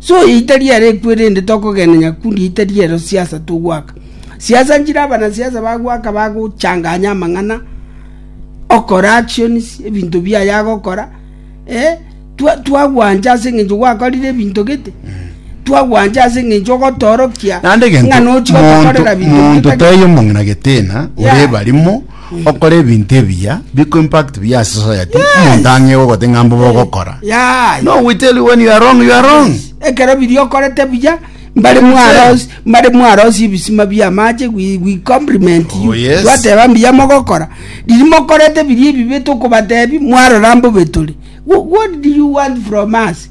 Soita riare ekwe erinde tokogenenya kundi ita riero siasa togwaka. Siasa nchire abanasiasa bagwaka bagochanganya amang'ana okora actions ebinto biaye agokora eh, twa- twagwancha ase eng'encho gwakorire ebinto gete twagwancha ase eng'encho ogotoorokia Naende egento ng'a nochi gotokorera monto- binto monto gete gete. taiyo mong'ina geteena Yeah. ore ebarimo Okore ebinto ebiya biko impact buya ase society omonto ang'e igo gote ng'a mbobe ogokora Yeah. no we tell you when you are wrong you are wrong ekero biria okorete buya mbare That's mwarosi mbare mwarosi ebisima bia amache we, we compliment you Oh, yes. twateba mbuya mogokora riria mokorete biria ebibe tokobatebi mwarora mbobe tore Wh- what do you want from us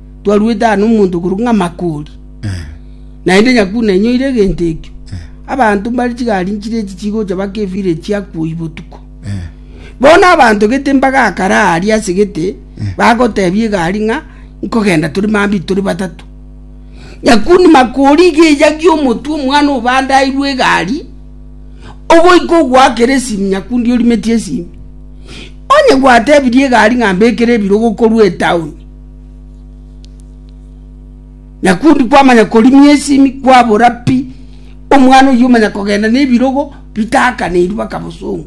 twaruete aa nomonto okorokwa ng'a Makori, naende nyakuna enyoire egento ekio. Abanto mbare chigari nchire echi chigocha baka efira eye chiakwa oyio botuko. Bono abanto gete mbagakare aaria ase gete, bagotebia egari ng'a nkogenda tore mambia tore batato. Nyakuna Makori iga eyagia omotwe omwana obandairwe egari, ogoika ogoakera esimi nyakundi orimetie esimi. Onye gwatebirie egari ng'a mbekere ebirogo korwa etaoni. Na kundi kwamanya korimia esimi kwabora pi, omwana oyio omanya kogenda na ebirogo bitakaneirwe baka bosongo.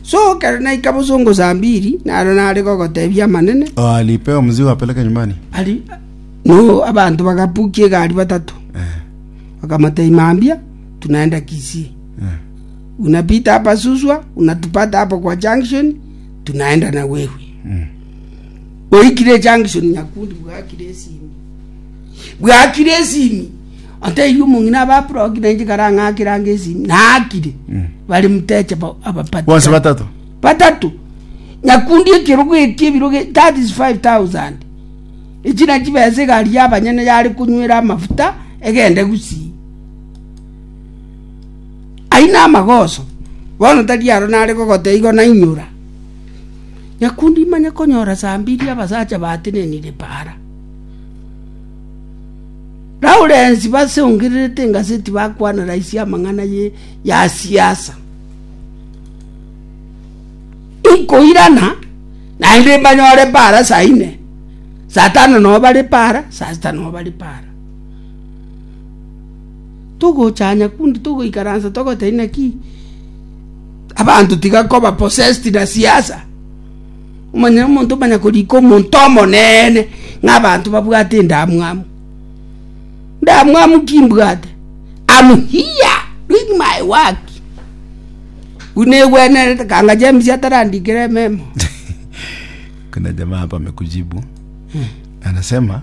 So ekero naika bosongo saa mbiri, naro nare gogotebia amanene, Oh, alipewa mzigo apeleke nyumbani. ari no abanto bagapukia egari batato, Eh, bakamotebia mambia, tunaenda Kisii. eh. Unapita hapa Suswa, unatupata hapo kwa junction, tunaenda nagwegwe oikire junction nyakundi bwakire esimi bwakire esimi atairie omong'ina abaproki nainche karang'akirange esimi naakire Mm. bari muteche ba- abapati bonsi kare. batato batato nyakundi ekerogo etie ebirogo that is 5000 echi nachi besa egari yabanyene yare konywera amafuta egende gusii Aye namagoso, bono tari aro nare kogota igo nainyora. Nyakundi imanye konyora saa mbiri abasacha batenenire para. Lawrence basongererete engaseti bakwana raisi amang'ana ye ya siasa. Nkoirana naende mbanyore para saa ine, saa tano noo bare para, saa sita noo bare para. Togochanya kundi togoikaransa togoteba inaki abanto tiga koba possessed na siasa. Omanyene omonto omanya korika omonto omonene ng'a abanto babwate endamwamu. Ndamwamu ki mbwate? Am here doing my work. Buna egwenerete kanga James atarandikire ememo. Kuna jamaa hapa amekujibu. Anasema